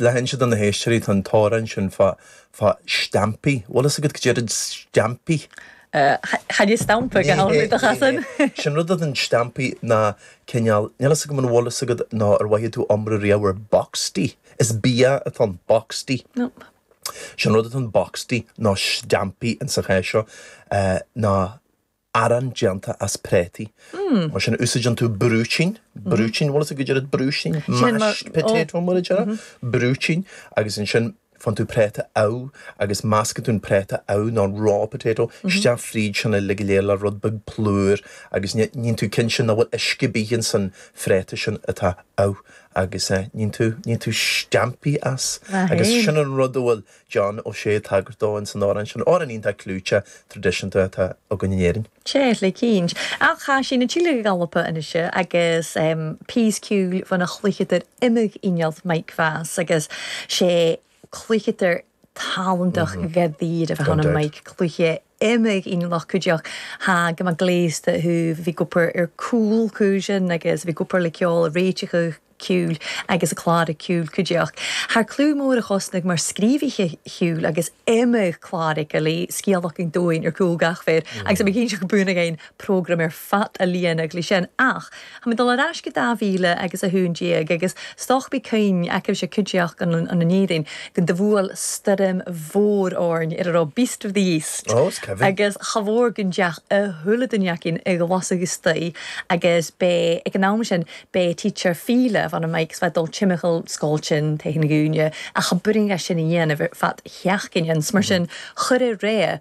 Le hinse do na héisteoirí, tá an t-amhrán sin fá fá steaimpí. Bhfuil fhios agat goidé rud an steaimpí? Chaith mé stampa go h-amhlaidh do chasain. Sin rud atá ann steaimpí ná cineál, níl fhios agam an bhfuil fhios agat nó ar mhothaigh tú iomrá riamh ar boxty. Is bia atá ann, boxty. Nope. Sin rud atá ann, boxty, nó steaimpí ins an chás seo, ná. arán déanta as préataí. Mar sin, úsáideann tú brúitín, brúitín, bhfuil fhios a'd goidé rud brúitín? Mashed potato mar a deireadh, brúitín, agus ansin faigheann tú préata amh agus meascann tú an préata amh nó an raw potato isteach fríd sin uilig go léir le rud beag plúr agus níonn tú cinnte nach bhfuil uisce ar bith ins an phréata sin atá amh agus níonn tú, níonn tú steaimpí as agus sin an rud a bhfuil John Ó Sé ag tagairt dó in san amhrán sin, amhrán iontach clúiteach traidisiúnta atá againn in Éirinn. 'S e le cinnt. Ach tha sinn a' tilleadh a dh'Alba a-nise agus pìos ciùil bhon a' chluicheadair ioma-inneal Mike Vass agus 's e cluicheadair tàlantach dhaite a bheadh ann, Mike, cluich. D'imigh i ngloc go deoch. Há, go mba gléasta thú! Bhí Cooper ar cúl cúisean agus bhí Cooper le ceol a réiteach ciúil agus a clár ciúil go deoch. Thar clú mór a chosnaigh mar scríobhaí chiúil agus imigh cláracha le scéal acu dúinn ar cúl gach féir agus bhí cinnte go b'ionadh aon program ar fad a líonadh leis sin ach tá mé ag dul ar ais go 2000 agus 11 agus stoc bí cinn acu seo cuideachta an an an Éirinn go do bhuail stoirm mhór orainn ar a raibh Beast of the East Ó, is cuimhin. agus cha mhór go ndeach a shúile do Jeaicín ag lasadh istoí' agus b'é ag an am sin b'é teacher Fíle bhan an Mikes bheith dul timcheall scoil tinn théis na gcúinne ach cha b'fhurasta sin a dhéanamh ar fad Jeaicín ins mar sin chuir a réidh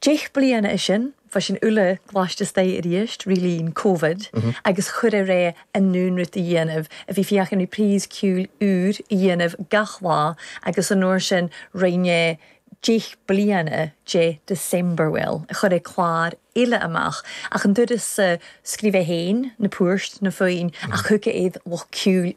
Deich bliana is sin, bhí sinn uile gluaiste astoigh arís re linn Covid agus chuireadh é i nDún rud a dhéanamh a bhí féachaint ar phrase ciúil úr a dhéanamh gach lá agus an uair sin rinne deich bliana de December bhuel, chuireadh clár eile amach ach an turas scríobh é féin, na poirt, na foinn ach thugadh iad lucht ciúil